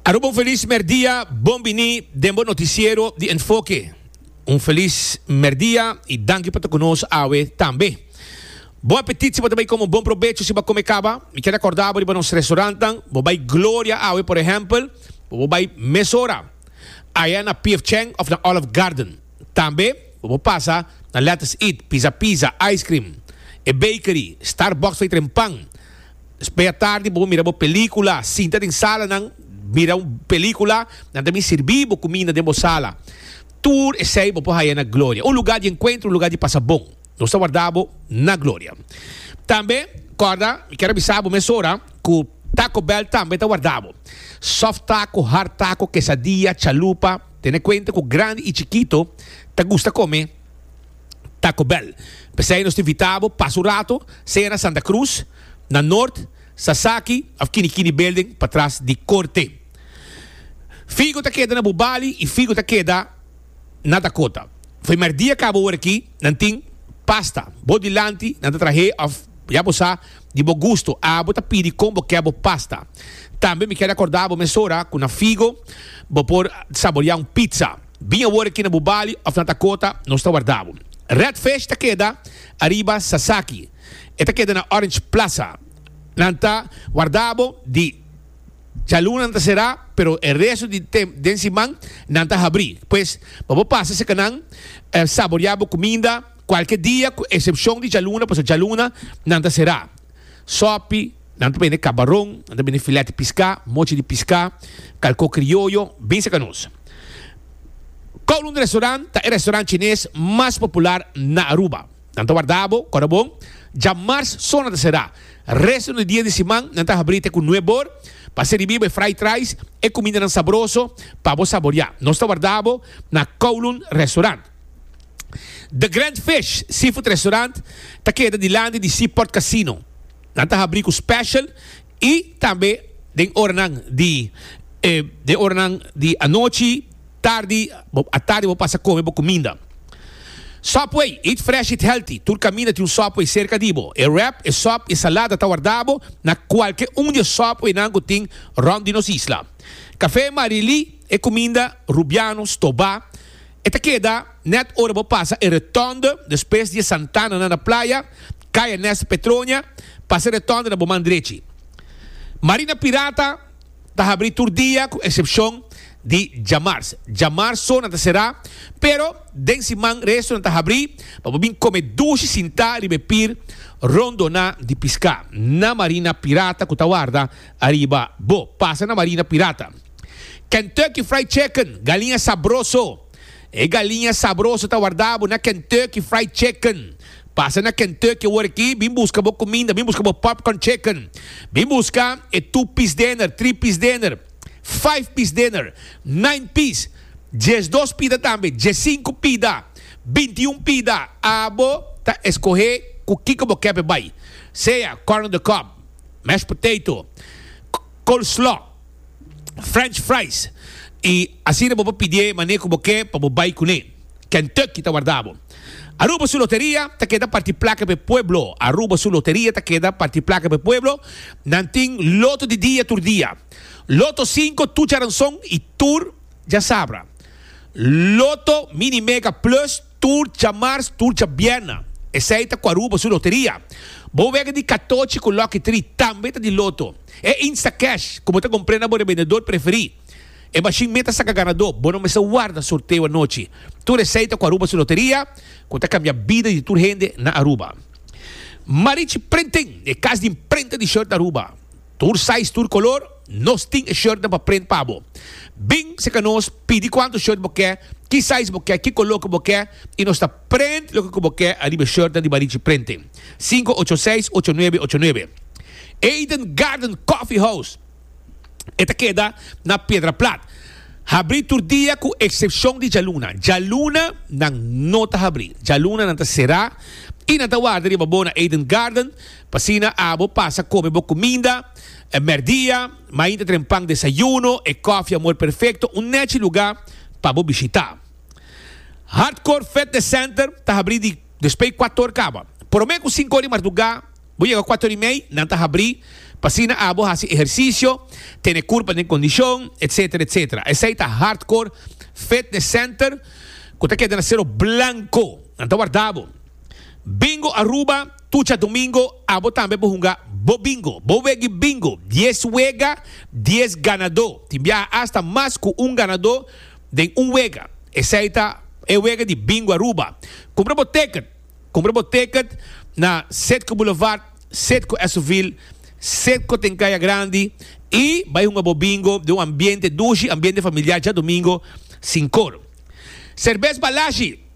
Aruba un felis merdia, bon bini den bo noticiero di Enfoke. Un felis merdia y danki pa ta cu nos awe tambe. Bon apetit si bo ta bay come un bon probecho si bo a come caba. Mi kier acorda bo riba nos restaurantnan. Bo bay Gloria awe por ehempel, bo bo bay mesora aya na PF Chang of na Olive Garden. Tambe bo bo pasa na Let's Eat, Pizza Pizza, Ice Cream, E Bakery, Starbucks fey tren pan. Mea tardi bo mira bo pelíkula. Sinta den salanan mira un pelíkula. Nan ta bin sirbi bo kuminda den bo sala. Tur esei bo por haña na Gloria, un lugá di enkuentro, un lugá di pasa bon. Nos ta warda bo na Gloria. Tambe kòrda, mi kier a bisa bo mesora ku Taco Bell tambe ta warda bo. Soft taco, hard taco, quesadilla, chalupa, tene kuenta ku grandi i chikito ta gusta kome. Taco Bell. P'esei nos ta invitá bo pasa un rato sea na Santa Cruz, na Noord, Sasaki of Kini Kini Building patras di Korte. Figo ta keda na bo bali i figo ta keda na Dakota. F'e mèrdia kaba ora aki nan tin pasta. Bo dilanti nan ta trah'é of ya bo sa di bo gusto abo ta pidi kon bo ke bo pasta. Tambe mi keda kordá bo mesora ku na figo bo por saboreá un pizza. Bin awor aki na bu balio of na Dakota, nos ta warda bo. Redfish ta keda ariba Sasaki. E ta keda na Orange Plaza. Nan ta warda bo di djaluna nan ta será, pero e resto di den siman nan ta habrí. Pues pa bo pasa cerca nan, saboriá bo cuminda cualkier dia cu excepcion di djaluna, pasobra djaluna nan ta será. Sopi. Nan ta bende kabaron, nan ta bende filèt di piská, mochi di piská, kalkó krioyo, bin seka nos. Kowloon Restaurant ta e restaurant chines mas popular na Aruba. Nan ta warda bo kòrda bon. Djamars so nan ta será. Resto di dia di siman nan ta habrí te ku nuèb bor pa siribí bo e fried rice, e kumindanan sabroso pa bo saboriá. Nos ta warda bo na Kowloon Restaurant. The Grand Fish Seafood Restaurant ta keda dilanti di Seaport Casino. Nan ta habrí ku special i tambe den oranan di den oranan di anochi, tardi, atardi bo pasa kome bo kuminda. Subway, eat fresh eat healthy, tur kaminda tin un Subway serka di bo. E wrap, e sòp, e salada ta warda bo na kualke un di e Subwaynan ku tin rònt di nos isla. Kafé Marilí, e kuminda Rubiano, Stobá. E ta keda nèt ora bo pasa e Rotonde, despues di e santananan na playa, kai Ernesto Petronia, pasa e Rotonde na bo man drechi. Marina Pirata ta habrí tur dia ku eksepshon di djamars. Djamars so nan ta será, pero den siman resto nan ta habrí pa bo bin kome dushi sintá riba e pir rondoná di piská na Marina Pirata ku ta warda ariba bo. Pasa na Marina Pirata. Kentucky Fried Chicken, galiña sabroso. E galiña sabroso ta warda bo na Kentucky Fried Chicken. Pasa na Kentucky awor aki, bin buska bo kuminda, bin buska bo popcorn chicken, bin buska e two piece dinner, three piece dinner, five piece dinner, nine piece, dies dos pida tambe, dies sinku pida, binti un pida, abo ta eskohe ku kiko bo kep e bai, sea corn on the cob, mashed potato, coleslaw. French fries y asina bo por pidié mané cu bo ke pa bo bay cuné. Kentucky ta warda bo. Aruba su loteria ta keda parti placa p'e pueblo. Aruba su loteria ta keda parti placa p'e pueblo. Nan tin loto di dia tur dia. Loto cinco tur djaranzon y tur djasabra. Loto mini mega plus. Tur djamars, tur djabièrna. Esei ta ku Aruba su loteria. Bo wega di katochi ku Lucky Tri tambe ta di loto. E Instacash ku bo ta kompr'é na bo rebendedor preferí. E mashin meta saka ganadó. Bo no mester warda sorteo anochi. Tur esei ta ku Aruba su loteria ku ta kambia bida di tur hende na Aruba. Marichi Printing, e kas di imprenta di short na Aruba. Tur size, tur color, nos tin e shirtnan pa print pa bo. Bin seca nos, pidi cuanto shirt bo ke, ki size bo ke, ki color cu bo ke, y nos ta print loke cu bo ke ariba e shirtnan di Barichi Printing. Cinco ocho seis ocho nuebe ocho nuebe Eden Garden Coffee House E ta keda na Piedra Plat. Habri tur dia cu excepcion di djaluna. Djaluna nan no ta habri. Djaluna nan ta cera y nan ta warda riba bo na Eden Garden. P'asina abo pasa kome bo kuminda e mèrdia, mainta tren pan desayuno, e kòfi amor perfekto, un nèchi lugá pa bo bishitá. Hardcore Fitness Center ta habrí di despei kuator kaba. Promé ku sinku or di mardugá bo yega kuator i mei, nan ta habrí p'asina abo hasi ehersisio, tene kurpa den kondishon, etc. Etc. Esei ta Hardcore Fitness Center ku ta keda na Sero Blanko. Nan ta warda bo. Bingo Aruba, Tucha Domingo, Abo tambe por hunga bo bingo. Bo wegi bingo, dies wega, dies ganadó. Tin biaha hasta mas cu un ganadó den un wega. Esey ta e wega di Bingo Aruba. Cumpra bo ticket. Cumpra bo ticket na Citgo Boulevard, Citgo Esoville, Citgo Tencaya Grandi y bay hunga bo bingo den un ambiente dushi, ambiente familiar, djadomingo sin coro. Serbes Balashi.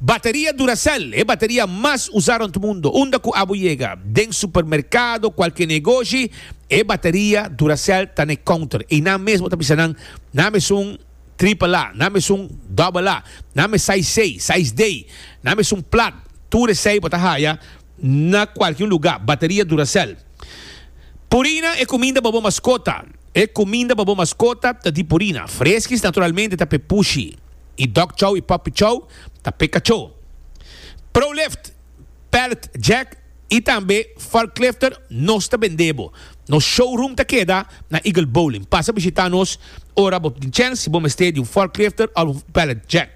Bateria Duracell, e bateria mas usá rond mundo, unda ku abo yega den supermerkado, kualke negoshi, e bateria Duracell ta na e kounter i nan mesmu ta bisa nan, Nan mesun tripel A, nan mesun dòbbel A, nan me saiz sei, saiz D, nan mesun plat, tur esei bo ta haya. na kualke un lugá, bateria Duracell. Purina e kuminda pa bo maskota. E kuminda pa bo maskota ta di Purina. Freskis naturalmente ta p'e pushi i dog chow i puppy chow ta p'e kachó. Prolift, Pallet Jack i tambe Forklifter nos ta bend'é bo. Nos showroom ta keda na Eagle Bowling. Pasa bishitá nos ora bo tin chèns si bo mester di un Forklifter òf un Pallet Jack.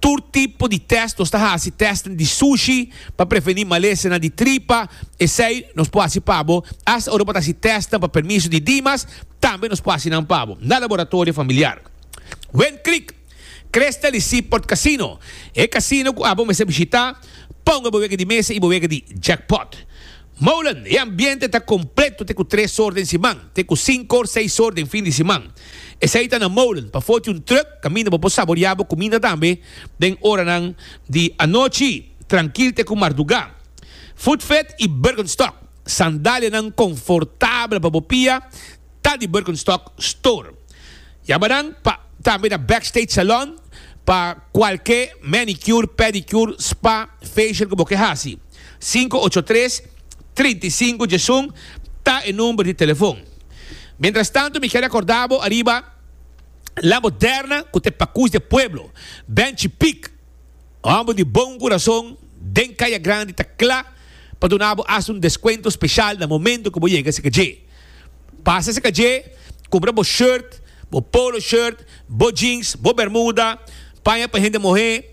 Tur tipo di tèst, nos ta hasi tèstnan di sushi pa prevení malesenan di tripa, esei nos por hasi pa bo, asta ora bo ta hasi tèstnan pa permiso di Dimas, tambe nos por hasi nan pa bo na laboratorio familiar. Wind Creek, Crystal i Seaport Casino, e casino cu abo mester bishita, ponga bo wega di mesa i bo wega di jackpot. Molen, e ambiente ta completo te cu tres or den siman, te cu cinco or seis or den fin di siman. Esey ta na molen, pafo tin un truck caminda bo por saborea bo cuminda tambe den oranan di anochi, trankil te cu marduga. Footfed y Birkenstock, sandalianan confortabel pa bo pia, ta di Birkenstock Store. Yama nan pa tambe na Backstage Salon pa cualke manicure, pedicure, spa, facial cu bo ke haci. Sinku ocho tres, trinta i sinku djesun ta e number di telefon. Mientras tanto mi ke recorda bo ariba La Moderna cu ta e pacus di e pueblo. Benchi Pic, homber di bon curason den Caya Grandi ta cla pa duna bo hasta un descuento special na momento cu bo yega cerca dje. Pasa cerca dje, cumpra bo shirt, bo polo shirt, bo jeans, bo bermuda, paña pa hende mohe.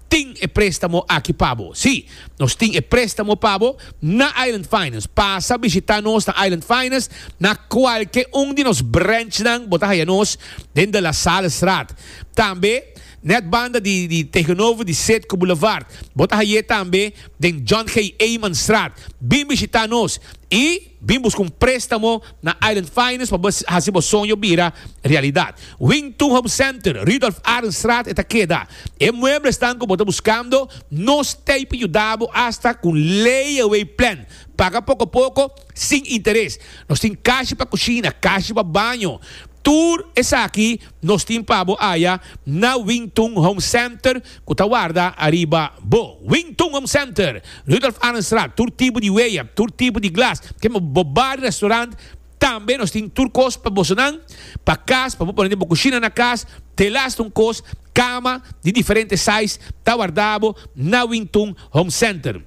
Tin e préstamo aki pa bo? Sí, nos tin e préstamo pa bo na Island Finance. Pasa bishitá nos na Island Finance. Na kualke un di nos branchnan bo ta haya nos den De La Salle Straat. Tambe nèt banda di di tegenover di Sedco Boulevard. Bo ta hay'é tambe den John G. Eyman Straat. Bin bishitá nos i. Bin busca un prestamo na Island Finance pa bo haci bo soño bira realidad. Wington Home Center, Rudolph Arendstraat e ta keda. E mueblesnan cu bo ta buscando nos t'ey pa yuda bo hasta cu un layaway plan. Paga poco poco, sin interes. Nos tin cashi pa cushina, cashi pa baño. Tur esaki Nos tin pa bo aya na Wing Tun Home Center cu ta warda ariba bo. Wing Tun Home Center, Rudolph Arendstraat, tur tipo di weya, tur tipo di glas, te bo bar y restaurant, tambe nos tin tur cos pa bosonan, pa cas, pa bo pone den bo cushina na cas, telas ta un cos, cama di diferente size ta warda bo na Wing Tun Home Center.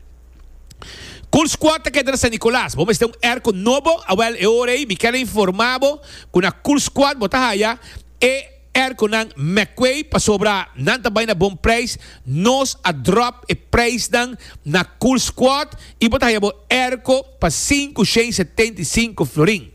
Cool Squad ta keda na San Nicolas. Bo mester un airco nobo? Awel e ora ei mi kel a informa bo cu na Cool Squad bo ta haya e airconan McQuay pasobra nan ta bay na bon prijs. Nos a drop e prijsnan na Cool Squad y bo ta haya bo airco pa sincu shen setenta y sinco florin.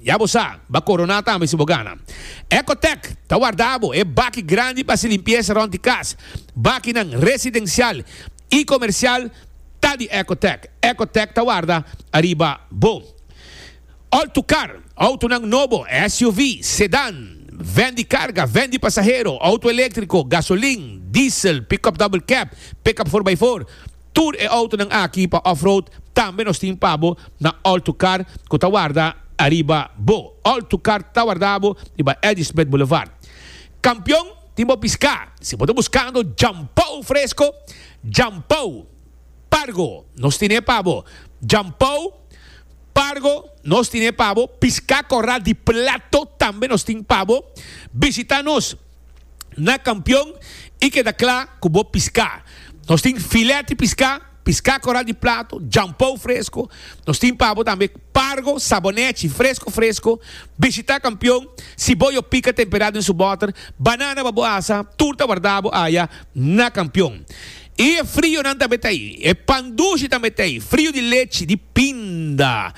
Ya bo sa, b'a koroná tambe si bo gana. Ecotec ta warda bo e baki grandi p'hasi limpiesa rònt di kas. Bakinan residensial i komersial ta di Ecotec. Ecotec ta warda ariba bo. Òl tu kar, outonan nobo, SUV, sedan, vèn di karga, vèn di pasahero, outo eléktriko, gasolin, diesel, pick-up double cab, pick-up for by four, Tur e outonan aki pa off-road tambe nos tin pa bo na Alto Kar ku ta warda ariba bo. Alto Kar ta warda bo riba Ladysmith Boulevard. Kampion, tin bo piská! Si bo ta buskando djampou fresko, djampou, pargo, nos tin e pa bo. Djampou, pargo, nos tin e pa bo. Piská korá di plato tambe nos tin pa bo. Bisitá nos. na Kampion i keda kla ku bo piská. Nos tin filé di piská, piská koral di plato, jampou fresko. Nos tin pa bo tambe pargo, sabonechi, fresko fresko. Bishitá Kampion, si bo yo pika temperá den su bòter, banana pa bo asa, turta wardá bo aya na Kampion. I e frionan tambe ta ei, e pan dushi tambe ta ei, frio di lechi, di pinda.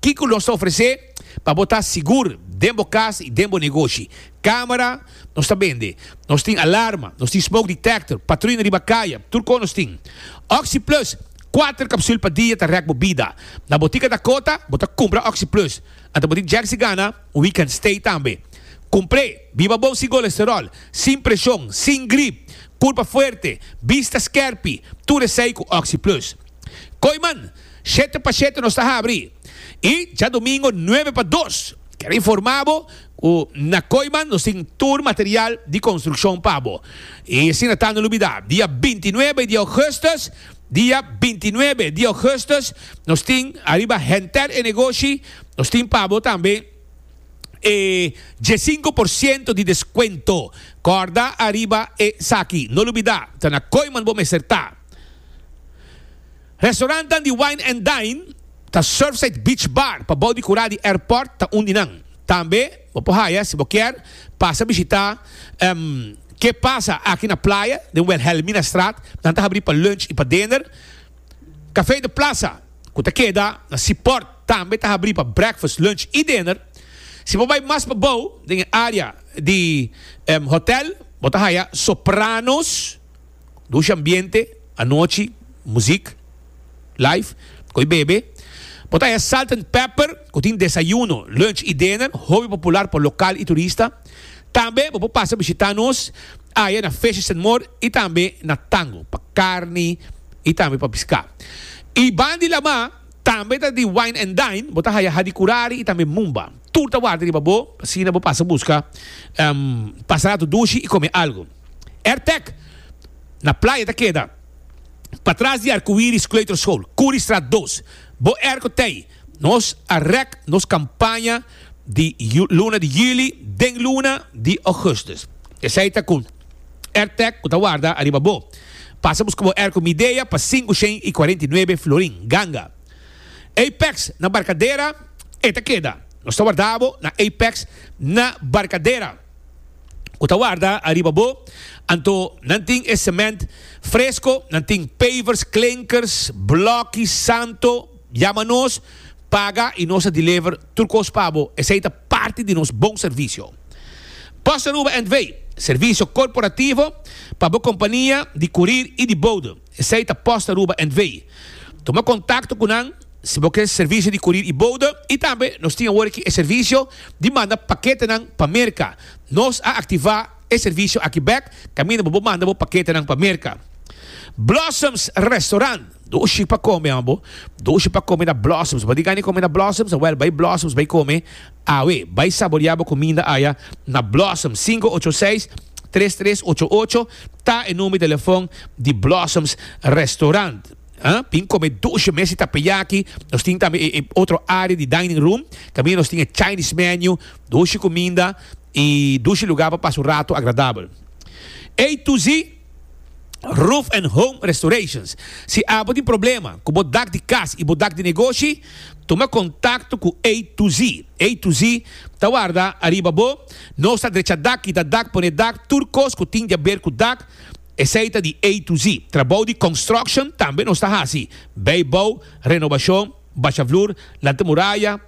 Kiko nos ta ofresé pa bo ta sigur den bo kas i den bo negoshi? Kámara nos ta bende. Nos tin alarma, nos tin smoke detector, patruina riba kaya, tur kos nos tin. Oxi Plus, kuater kapsul pa dia ta rèk bo bida. Na botika Dakota bo ta kumpra Oxi Plus. Anto bo tin Jersey Gana, un week kan stay tambe. Kumpr'é, biba bon sin kolesteròl, sin preshon, sin grip, kurpa fuerte, bista skèrpi, tur esei ku Oxi Plus. Koiman, shete pa shete nos ta habri y djadomingo nuebe pa dos. Quiero informa bo cu na Koiman nos tin tur material di construccion pa bo. Y asina ta no olbida, dia bintinuebe di augustus, dia bintinuebe di augustus nos tin ariba Henter e Negoshi, nos tin pa bo tambe e diesinco por ciento di descuento. Corda ariba esaki, no olbida, ta na Koiman bo mester ta. Restaurantnan di Wine and Dine ta Surfside Beach Bar pabou di kura di airport ta un di nan. Tambe bo por haya si bo kier pasa bishita Ke Pasa Aki na Playa den Wilhelmina Straat. Nan ta habri pa lunch y pa dinner. Café de Plaza cu ta keda na Seaport tambe ta habri pa breakfast, lunch y dinner. Si bo bay mas pabou den e area di hotel bo ta haya Sopranos. Dusha ambiente, anochi, muzik, live, cu e bebe. Por ta e Salt and Pepper cu tin desayuno, lunch y dinner hopi popular pa local y turista. Tambe bo por pasa bishita nos aya na Fishes and More y tambe na Tango pa carni y tambe pa pisca. Y ban di lama tambe ta di wine and dine, bo ta haya hadi curari y tambe mumba. Tur ta warda riba bo, asina bo pasa busca, pasa rato dushi y come algo. Airtech na playa ta keda patras di Arcoiris Kleuterschool, Curiestraat dos. Bo air cu t'ey, nos a rek nos campaña di luna di juli den luna di augustus. Esey ta cu Airtech cu ta warda ariba bo. Pasa busca bo air cu Midea pa sinku shen i cuarenta i nuebe florin, ganga. Apex na Barcadera, e ta keda. Nos ta warda bo na Apex na Barcadera. ku ta warda ariba bo, anto nan tin e semènt fresko, nan tin pavers, klinkers, blòki, santo, yama nos, paga i nos ta deliver tur kos pa bo, esei ta parti di nos bon servisio. Bossa Aruba NV. Servisio korporativo pa bo kompania di kurir i di boude. Esei ta post Aruba and Vei. Tuma kontakto ku nan si bo ke servisio di kurir i bouda i tambe nos tin awor aki e servisio di manda paketenan pa Merka. Nos a aktivá e servisio aki bèk kaminda bo por manda bo paketenan pa Merka. Blossoms Restaurant. Dushi pa kome, amo. Dushi pa kome na Blossoms. Bo ta di gana di kome na Blossoms? Awèl, bai Blossoms bai kome. Awe, bai saborea bo cuminda aya na Blossoms, sinku ocho seis, tres tres ocho ocho ta e number di telefon di Blossoms Restaurant. Tin come dushi mes di tapeyaki, nos tin tambe e otro area di dining room, caminda nos tin e Chinese menu, dushi cuminda y dushi lugar pa pasa un rato agradabel. Ey tu zi! Roof and Home Restorations. Si abo tin problema ku bo dak di kas i bo dak di negoshi, tuma kontakto ku A to Z. A to Z ta warda ariba bo. Nos ta drecha dak, kita dak, pone dak, tur kos ku tin di a ber ku dak, esei ta di A to Z. Trabou di construction tambe nos ta hasi, bei bou, renobashon, basha flur, lanta muraya,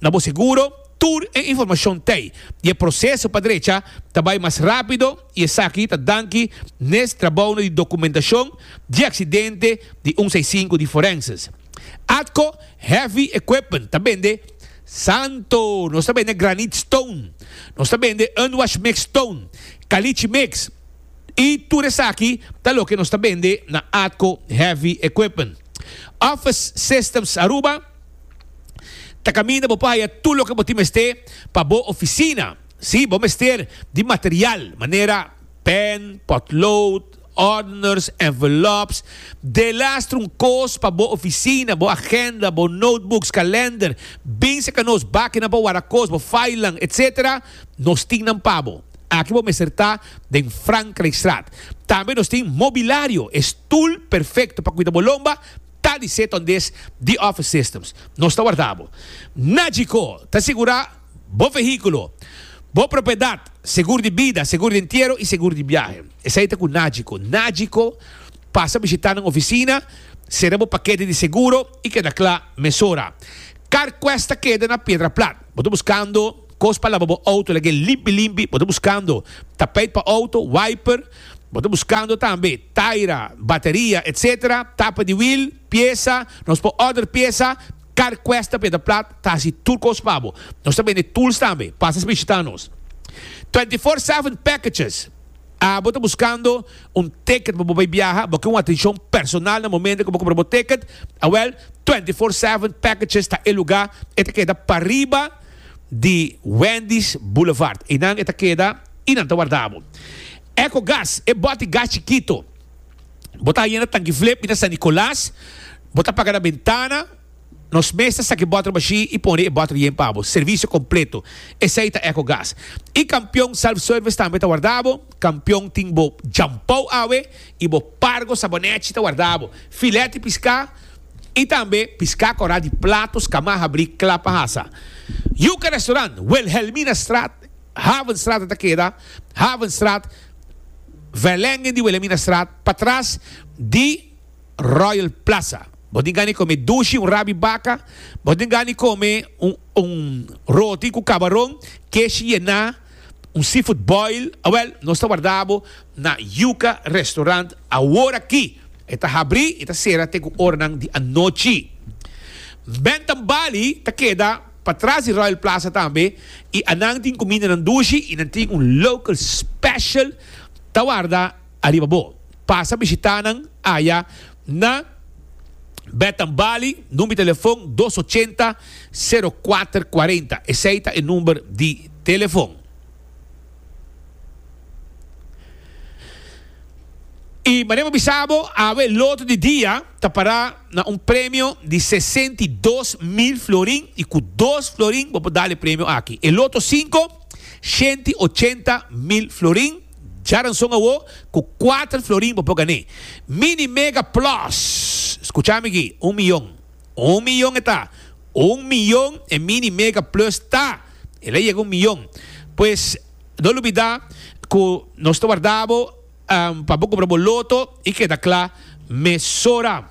Na bo seguro, tur e informashon t'ei i e proseso pa drecha ta bai mas rápido i esaki ta danki nes trabounan di dokumentashon di aksidente di un seisinku di Forenses. Atco Heavy Equipment ta bende, Santo! Nos ta bende granit stone, nos ta bende unwash mix stone, caliche mix i tur esaki ta loke nos ta bende na Atco Heavy Equipment. Office Systems Aruba. ta caminda bo por haya tur loke bo tin mester pa bo oficina. Si, bo mester di material manera pen, potlood, ordners, envelopes, delastra un cos pa bo oficina, bo agenda, bo notebooks, calender, bin seca nos bakinan pa wara cos, bo filenan, etc. Nos tin nan pa bo. Aki bo mester ta den Frankrijkstraat. Tambe nos tin mobilario, e stoel perfecto pa cuida bo lomba, ta di seta un des di Office Systems. Nos ta warda bo. Na Djiko, ta sigura bo vehiculo, bo propiedad, segur di bida, segur di entiero y segur di biahe. Esai ta cu na Djiko. Na Djiko, pasa bishita nan oficina, sera bo paquete di seguro y keda cla mesora. Carquest ta keda na Piedra Plat. Bo ta buscando cos pa laba bo auto lagu'e limpi limpi, bo ta buscando tapijt pa auto, wiper, Bo ta buskando tambe taira, bateria, etc. Tapa di wiel, piesa, nos por order piesa, Carquest ta peda plat ta hasi tur cos pa bo. Nos ta bende tools tambe, pasa spishita nos. Twenty four seven packages, Abo ta buskando un ticket pa bo bay biaha, bo kin un atencion personal na momento cu bo compra bo ticket, awel Twenty four seven packages ta e lugar, e ta keda pariba di Wendy's Boulevard, eynan e ta keda. I nan ta warda bo. Ecogas, e bòti gas chikito. Bo ta haya na Tanki Flip i na San Nicolas. Bo ta paga na bentana. Nos mes ta saki bòter mashí i pone e bòter yen pa bo. Servisio kompleto. Esei ta Ecogas. I Kampion Self Service tambe ta warda bo. Kampion tin bo djampou awe i bo pargo sabonèchi ta warda bo. Filèt di piská i tambe piská kòrá di platos, kamá habrí, klapa hasa. Yuka Restaurant, Wilhelminastraat Havenstraat a ta keda Havenstraat, Verlengen di Willeminastraat patras di Royal Plaza. Bo tin gana di come dushi, un rabi baca, bo tin gana di come un roti cu cabaron, kesh yena, un seafood boil, awel nos ta warda bo na Yuca Restaurant aworaki. E ta habri y ta cera te cu oranan di anochi. Bentham Bali ta keda. Pa tras di Royal Plaza tambe y a nan tin cumindanan dushi y nan tin un local special ta warda ariba bo. Pasa bishita nan aya na Bed and Bali, number di telefon dos ochenta, sero kuater kuarenta. Esey ta e number di telefon. I manera mi a bisa bo, awe loto di dia ta para na un premio di sesenta i dos mil florin i ku dos florin bo por dal e premio aki. E loto sinko, shenta i ochenta mil florin, djaranson awo ku kuater florin bo por gané. Mini Mega Plus, skucha mi aki, un miyon, un miyon e ta, un miyon e Mini Mega Plus ta. El a yega un miyon. Pues, no lo bida cu nos ta warda bo pa bo cumpra bo loto y keda cla mesora.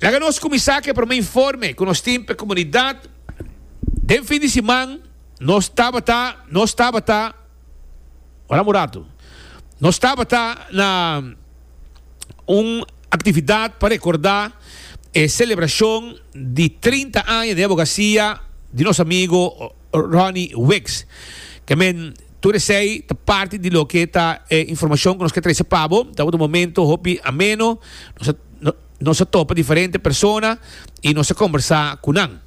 Laga nos cuminsa cu e prome informe cu nos tin pa e comunidad. Den fin di siman nos tabata, nos tabata. Ora un ratu. Nos tabata na un actividad pa recorda e celebracion di trinta aña di abogacia di nos amigo Ronnie Wicks. Ke men, tur esey ta parti di loke ta e informacion ku nos ke trese pa bo. Tabata un momento hopi ameno. Nos a topa diferente persona i nos a kombersá ku nan.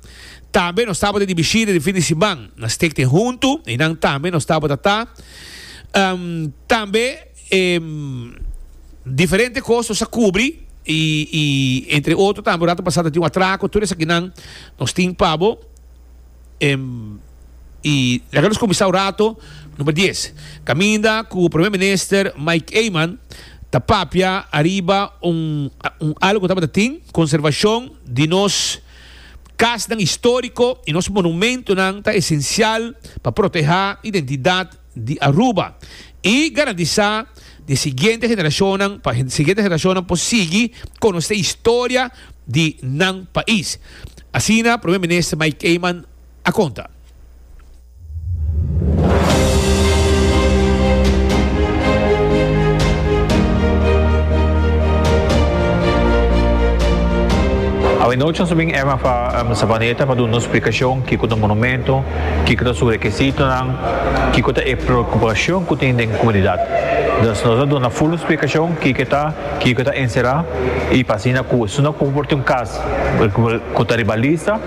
Tambe nos tabata di bishita di fin di siman na Stikting huntu i nan tambe nos tabata ta. Tambe diferente kos nos a kubri i entre otro tambe ora ta pasá ta tin un atrako tur esaki nan nos tin pa bo. Em, y laga nos cuminsa un rato. Number dies, caminda cu Primer Minister Mike Eman ta papia ariba un un algo cu tabata tin, conservacion di nos casnan historico y nos monumentonan ta esencial pa proteha identidad. di Aruba y garantisa di siguiente generashonnan pa siguiente generashonnan por sigui konosé historia di nan pais, asina Primer Minister Mike Eman a konta. Awanochi nos a bin Eman Savaneta pa duna un splikashon kiko ta un monumento. kiko ta su rekesitonan, kiko ta e preokupashon ku tin den komunidat. Nos a duna ful un splikashon kiko ta kiko ta enserá i pa asina ku esun no komporta un kas ku ta riba lista,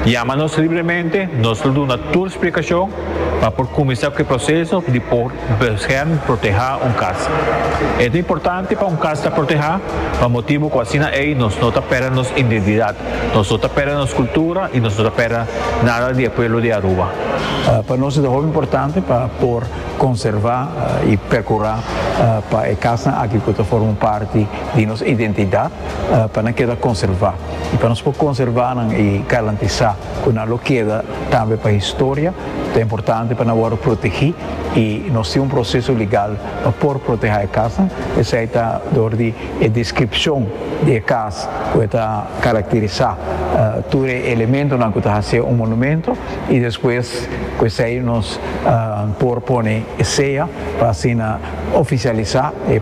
yama nos libremente, nos lo duna tur splikashon pa por kuminsá ku e proseso di por Bescherm, protehá, un kas. E ta importante pa un kas ta protehá pa motibu ku asina ei nos no ta pèrdè nos indentidat, nos no ta pèrdè nos kultura i nos no ta pèrdè nada di e pueblo di Aruba. Pa nos e ta hopi importante pa por konservá i perkurá pa e kasnan aki ku ta forma un parti di nos identidat pa nan keda konservá i pa nos por konservá nan i garantisá ku nan lo keda tambe pa historia ta importante pa nan wòrdu protegí. y nos tin un proceso legal pa por proteha e cas nan, esai ta dor di e descripcion di e cas cu e ta caracterisa tur e elementonan cu ta haci'e un monumento y despues cu esai nos por pone e sea pa asina oficialisa e.